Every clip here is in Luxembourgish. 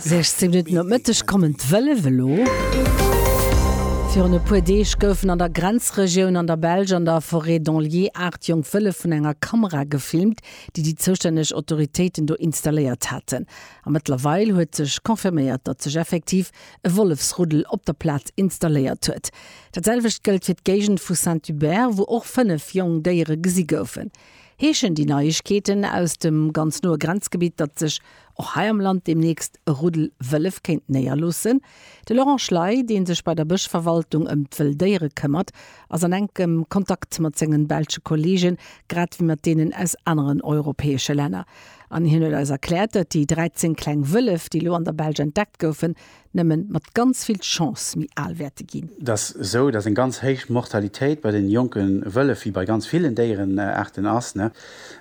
16 Minutten op Mëtteg kommen d'Wëllef elo. Virun e puer Deeg goufen an der Grenzregioun an der Belsch an der Forêt d'Anlier aacht jonk Wëllef vun enger Kamera gefilmt, déi déi zoustänneg Autoritéiten do installéiert haten. A mëttlerweil huet sech confirméiert, datt sech effektiv e Wollefsruddel op der Plaz installéiert huet. Dat selwecht gëllt fir d'Géigend vu Saint-Hubert, wou och fënnef jonk Déiere gesi goufen. Heeschen déi Neiegkeeten aus dem ganz noe Grenzgebitt, datt sech och hei am Land deemnächst e Ruddel Wëllef kéint néierloossen? De Laurent Schley, dee sech bei der Bëschverwaltung ëm d'Wëlldéiere këmmert, ass an enkem Kontakt mat sengen belsche Kolleegen, grad wéi mat deenen aus aneren europäesche Länner. An hien huet eis erkläert, datt déi 13 kleng Wëllef, déi elo an der Belsch entdeckt goufen, nëmmen mat ganz vill Chance méi al wäerte ginn. Et ass esou, datt eng ganz héich Mortalitéit bei den jonke Wëllef, wéi bei ganz villen Déierenaarten ass,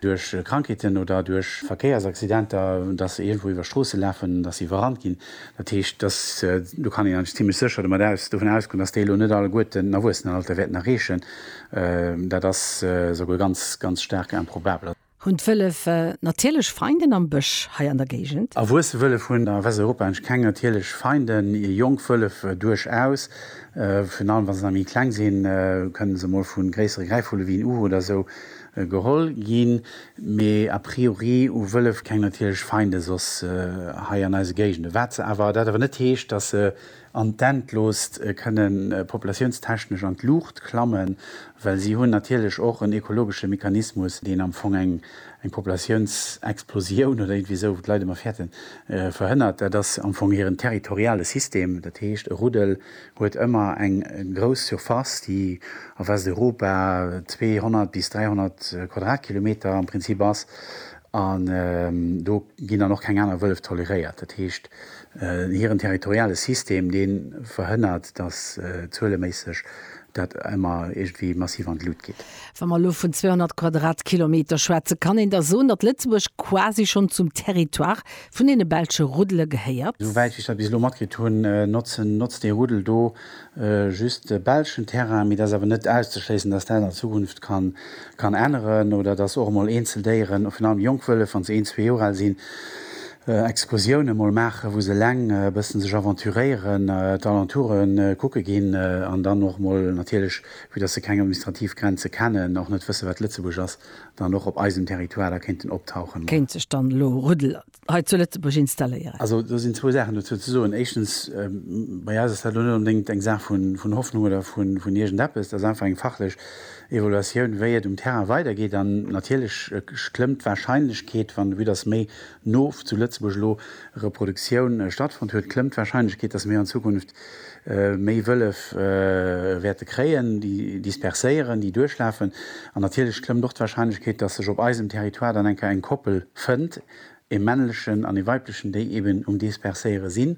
duerch Krankheeten oder duerch Verkéiersaccidenter, datt se iergendwou iwwer Stroosse lafen, datt se iwwerrannt ginn. Dat heescht, datt, do kann een eigentlech zimmlech sécher domat aus, dovun ausgoen, datt déi elo net alleguerten den Erwuessenenalter wäerten erreechen. Dat ass esouguer ganz, ganz staark improbabel. Hunn d'Wëllef natierlech Feinden am Bësch hei an der Géigend? Erwuesse Wëllef hunn a Westeuropa eigentlech keng natierlech Feinden. Jonk Wëllef duerchaus, virun allem wa se nach méi kleng sinn, kënne se mol vu gréissere Gräifvulle wéi en Uhu oder esou geholl ginn. Mee a priori hu Wëllef keng natierlech Feinde soss hei an eise Géigenden. Wat se awer, dat awer net heescht, datt se an d'Endloost kënne populatiounstechnesch an d'Luucht klammen, well si hunn natierlech och en ekologesche Mechanismus, deen am Fong eng Populatiounsexplosioun oder iergendwéi esou, wou d'Leit ëmmer fäerten, verhënnert. Dat ass am Fong hiren territoriale System. Dat heescht, e Ruddel huet ëmmer eng grouss Surface, déi a Westeuropa 200 bis 300 Quadratkilometer am Prinzip ass, An do ginn dann och keng aner Wëllef toleréiert. Dat heescht, hiren territoriale System, dee verhënnert, datt zueleméisseg dat ëmmer iergendwéi massiv an d'Lut geet. Wa mer elo vun 200 Quadratkilometer schwätzen, kann een da soen, datt Lëtzebuerg quasi schonn zum Territoire vun deene belsche Ruddele gehéiert? Esou wäit wéi ech dat bis elo matkritt hunn, notzt dee Ruddel do just de belschen Terrain, mee et ass awer net auszeschléissen, dass dat an Zukunft kann änneren oder dass och emol eenzel Déieren, virun allem jonk Wëllef, wann se een, zwee Joer al sinn, Excursiounen emol maachen, wou se eleng e bëssen sech aventuréieren, d'Alentoure kucke ginn an dann och emol natierlech, vue dass se keng administrativ Grenze kennen, och net wëssen, wat Lëtzebuerg ass, dann och op eisem Territoire da kéinten optauchen. Kéint sech dann elo Rudel hei zu Lëtzebuerg installéieren. Also do sinn zwou Saachen dozou ze soen. Éischtens, bei eis ass dat elo net onbedéngt eng Saach vun Hoffnung oder vun iergendeppes. Dat ass einfach eng fachlech Evaluatioun, wéi et um Terrain weidergeet. An natierlech klëmmt d'Warscheinlechkeet, wann de Vue dass méi no zu Lëtzebuerg elo Reproduktioun stattfonnt huet, klëmmt d'Warscheinlechkeet, dass mir an Zukunft méi Wëllef wäerte kréien, déi disperséieren, déi duerchlafen an natierlech klëmmt och d'Warscheinlechkeet, dass sech op eisem Territoire dann eng Kéier eng Koppel fënnt, e männlechen an e weiblechen, déi eben um Disperséiere sinn.